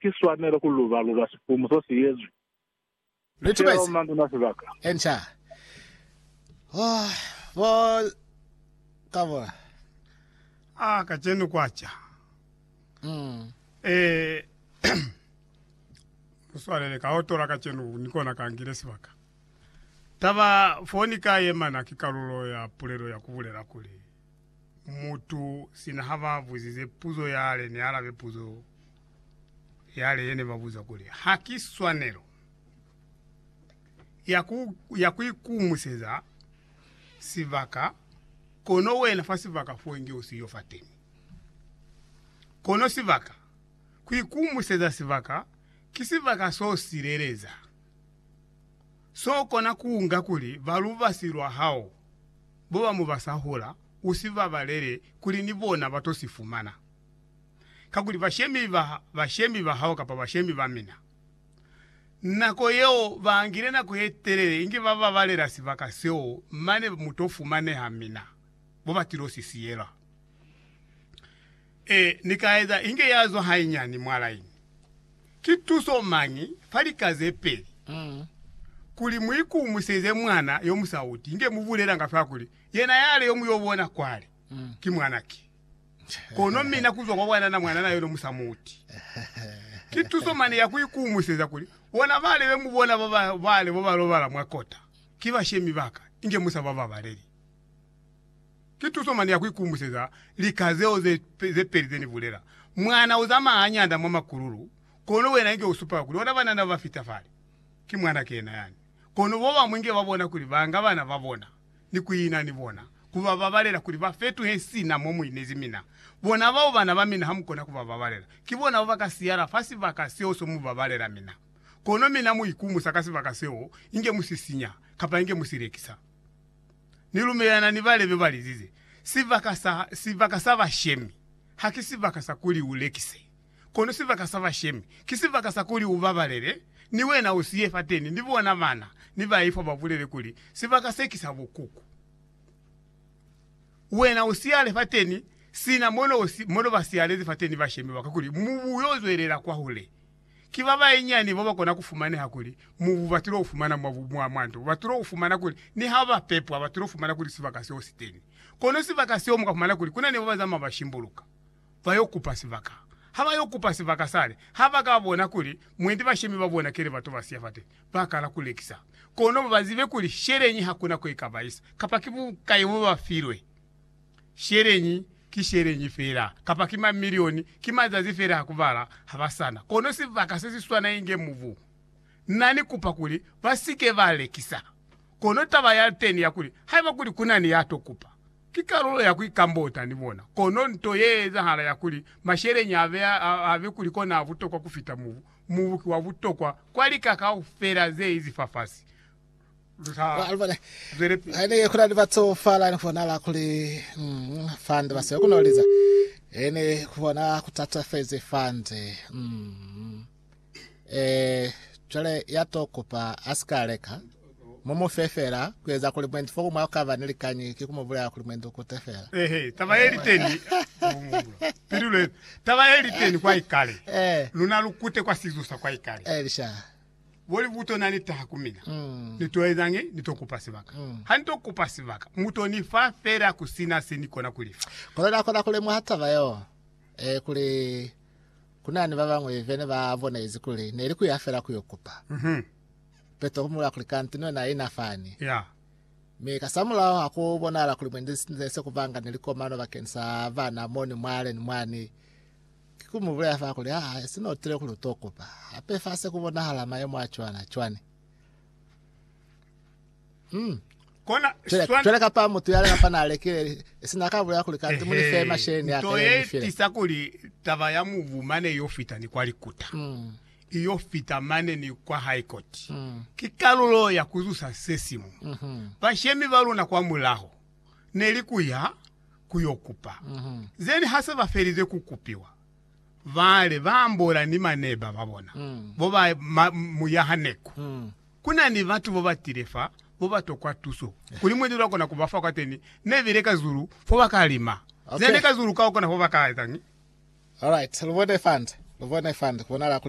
ki swanelo ku luba-luba sipumu so si yezwi sicelo mwa nduna sibaka. Enca. Oh, bo Kabula. Ah, kacenu kwa ca. Eh, muswalele, ka otola kacenu, ni kona ka ngile sibaka. Taba fo ni ka yema na ki kalulo ya pulelo ya ku bulela kuli, Mutu, sina ha ba buzize puzo yale, ni alabe puzo. Yale yene babuza kuli, Ha ki swanelo ya kuikumuseza sibaka, kono wena fa sibaka fo inge usiyo fateni? Kono sibaka, kuikumuseza sibaka, ki sibaka so sileleza, so kona kuunga kuli ba lubasi lwa hao boba mo basahula, usibabalele kuli ni bona bato sifumana. kakuli bashemi ba bashemi ba hao kapa bashemi ba mina. Nako yeo baangile nako ye telele inge ba babalela sibaka seo mane mu to fumaneha mina mo ba tilo si siyela. Ee, Ni ka eza inge ya zwa hainyani mwa laini. Ki tuso mañi fa lika ze peli kuli mu ikumiseze mwana yo musauti inge mu bulelanga fela kuli yena yale yo mu yo bona kwale ki mwana ki? Kono mina kuzwa kwa bwanana mwanana yono musamuti. Ki tuso mane ya kuikuumuseza kuli bona bale be mubona ba bale bo balobala mwa kota ki bashemi baka, inge musa bababaleli. Ki tuso mane ya kuikuumuseza lika zeo ze peli ze nibulela, Mwana uzamaya hañata mwa makululu, kono wena inge usupela kuli ona banana bafita fale. Ki mwanake yena yani. Kono bobamwi inge babona kuli banga bana babona. ni ku ina ni bona, ku ba babalela kuli ba fetuhe sina mo mu inezi mina. Bona bao bana ba mina ha mu kona ku ba babalela, ki bona bao ba ka siyala fa sibaka seo so mu babalela mina. Kono mina mu ikumusa ka sibaka seo inge mu si sinya, kapa inge mu si lekisa. Ni lumelelana ni ba lebe ba lizize, Sibaka sa, sibaka sa bashemi, ha ki sibaka sa kuli u lekise. Kono sibaka sa bashemi ki sibaka sa kuli ubabalele, ni wena usiye fateni, ni bona bana ni baifwa babulele kuli, Sibaka se ki sa bukuku. Wena usiyale fateni sina mono basiyalezi fateni bashemi baka kuli mubu uyo zwelela kwahule. Ki babayinyani bobakona kufumaneha kuli mubu batilo ufumana mwa nto. Batilo ufumana kuli niha bapepwa, batilo fumana kuli sibaka seo siteni. Kono sibaka seo mukafumana kuli kuna ni babazama bashimbuluka. Ba yo kupa sibaka. Ha ba yo kupa sibaka sale, ha ba ka bona kuli mwendi bashemi ba bona ki li batu ba siya fate, ba kala ku lekisa. Kono ba zibe kuli sheleñi ha ku na ko i ka ba isa, kapa ki bukai bo ba filwe. Sheleñi ki sheleñi fela, kapa ki mamilioni, ki mazazi fela a ku bala, ha ba sa na kono sibaka se si swana inge mubu. Na ni kupa kuli ba si ke ba lekisa. Kono taba ya teni ya kuli, haiba kuli ku na ni ya to kupa, Ki kalulo ya ku ikambota ni bona, kono nto ye ezahala ya kuli masheleñi a be, a be kuli kona a butokwa ku fita mubu. Mubu ki wa butokwa kwa lika kaufela ze izi fafasi. Lu sa zwele pili. Ku na ni batsofala, ni bonala kuli fande ba siyo ku no liza, he ni ku bona ku tatafezi fande. Eh, cwale ya to kupa a si ka leka, mu mu fe fela, ku eza kuli mwendi fo ku mwa ka ba ni likañi ki ku mu bulela kuli mwendi u kute fela. Ehe, taba ye li teni, pili lwe, taba ye li teni kwa ikale, Eh, luna lu kute kwa sizusa kwa ikale. eh, lisha. Boli butona ni taha ku mina, Mm. ni to ezañi? Ni to kupa sibaka. Mm. Ha ni to kupa sibaka, mu to ni fa fela ku sina se ni kona ku li fa. Kono na kona ku lemuha taba yeo, eh, kuli Ku na ni ba bañwi be ne ba bonezi kuli ne li ku ya fela ku yo kupa. Petro ku mu bulaya kuli, Kanti ni wena ina fani. Mi kasamulaho ha ku bonahala kuli mwendi ne se ku banga ni likomano bakeni sa bana mo ni mwale ni mwani. Ki ku mu bulaya fa kuli, Ha si n'o tile kuli u t'o kupa. Hape fa se ku bonahala mayemo a cwana cwani. Hmm. Kona Cwela, swana cwela kapa mutu yale kapa na lekile sina ka bulela kuli kanti muni fe masheni ya nto ye file. tisa kuli taba ya mubu mane iyo fita ni kwa likuta Mm. iyo fita mane ni kwa high court Mm. ki kalulo ya kuzusa se simu Mhm. bashemi ba luna kwa mulaho neli kuya kuyo kupa Mhm. zeni hase ba felize ku kupiwa bale ba ambola ni maneba ba bona Mm. bo ba ma, muyaha neku Mm. Ku na ni batu bo ba tile fa bo ba tokwa tuso kuli muendi lwa kona ku ba fa kwateni. Ne bile ka zulu fo ba ka lima. Ne bile ka zulu ka kona fo ba ka etañi? Alright, lu bone fande, lu bone fande, ku bonala kuli